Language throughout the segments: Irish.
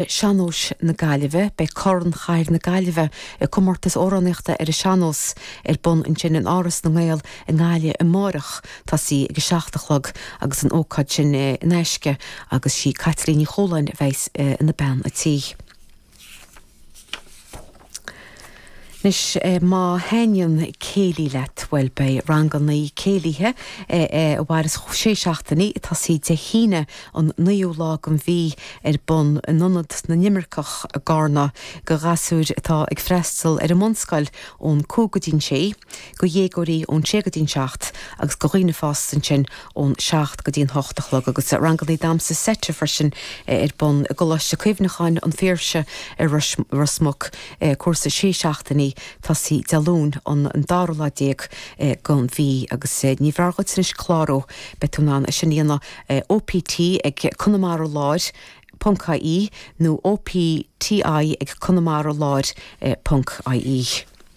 Sean-nóis na Gaillimhe. Beidh Corn Chathair na Gaillimhe, i gcomórtas amhránaíochta ar an sean-nós, ar bun ansin in Áras na nGael i nGaillimh amáireach, tosaí ag a seacht a chlog, agus an ócáid sin in aisce agus sí Caitlín Ní Chualáin a bheas ina bean a' tí. Anois, má thaitníonn céilí leat, bhuel, beidh rangannaí céilithe a mhairfeas sé seachtainí, ag tosaí Dé hAoine an naoú lá den mhí, ar bun in Ionad na nImirceach i gCarna. go ghasúir atá ag freastal ar an mbunscoil, ón cúig go dtí an sé, go dhéagóirí ón sé go dtí an seacht agus go dhaoine fásta ansin ón seacht go dtí an hocht a chlog agus ranganna damhsa seite freisin ar bun i gColáiste Cuimhneacháin an Phiarsaigh i Ros Muc, cúrsa sé seachtainí tosaí Dé Luain an dara lá déag den mhí agus ní mór dhuit anois clárú beidh tú in ann é sin a dhéanamh OPT ag Conamara Láir ponc ie nó OPTI ag Conamara Láir ponc ie.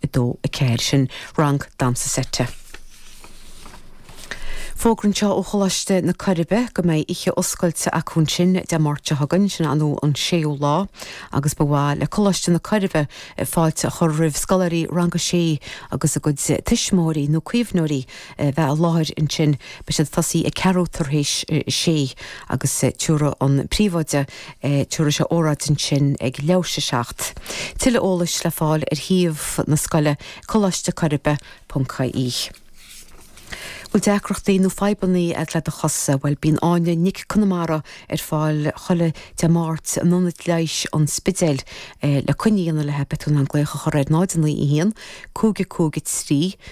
2, 4, sin rang damhsa seite. Fógra anseo ó Choláiste na Coiribe go mbeidh oíche oscailte acu ansin Dé Máirt seo chugainn, sin an an 6ú lá, agus ba mhaith le Coláiste na Coiribe fáilte a chur roimh scoláirí rang a sé agus a gcuid tuismitheoirí nó caomhnóirí a bheith i láthair ansin. Beidh siad ag tosaí ag ceathrú tar éis sé agus tiúrfaidh an príomhoide, tiúrfaidh sé óráid ansin ag leathuair tar éis 7. Tuilleadh eolais le fáil ar shuíomh na scoile, colaistecoiribe.ie. Bhfuil deacrachtaí nó fadhbanna agat le do chosa? Bhuel, bíonn Áine Nic Conmara ar fáil chuile Dé Máirt in Ionad Leighis an Spidéil le coinne a dhéanamh léi beidh tú in ann glaoch a chur ar 0 9 1 5 5 3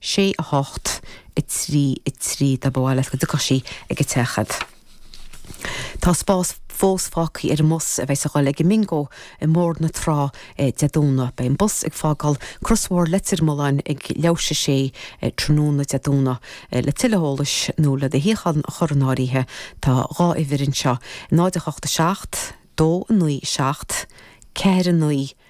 sé, a hocht, a trí, a trí, dá mba mhaith leat go dtiocfadh sí ag a teach a'd. Tá spás fós fágthaí ar an mbus a bheas a' dhul ag an mBingo i mBóthar na Trá Dé Domhnaigh. Beidh an bus ag fágáil Crosbhóthar Leitir Mealláin ag leathuair tar éis a sé tráthnóna Dé Domhnaigh. Le tuilleadh eolais nó le do shuíochán a chur in áirithe tá dhá uimhir anseo, 0, 8, 7, 2, 9, 7, 4, 9,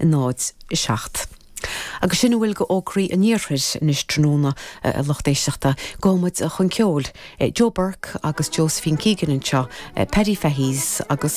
0, 7 agus sin a bhfuil go fhógraí an Iarthair anois tráthnóna a lucht éisteachta gabhfaidh muid chun ceoil, Joe Burke agus Josephine Keegan anseo, Paddy Fahy's agus.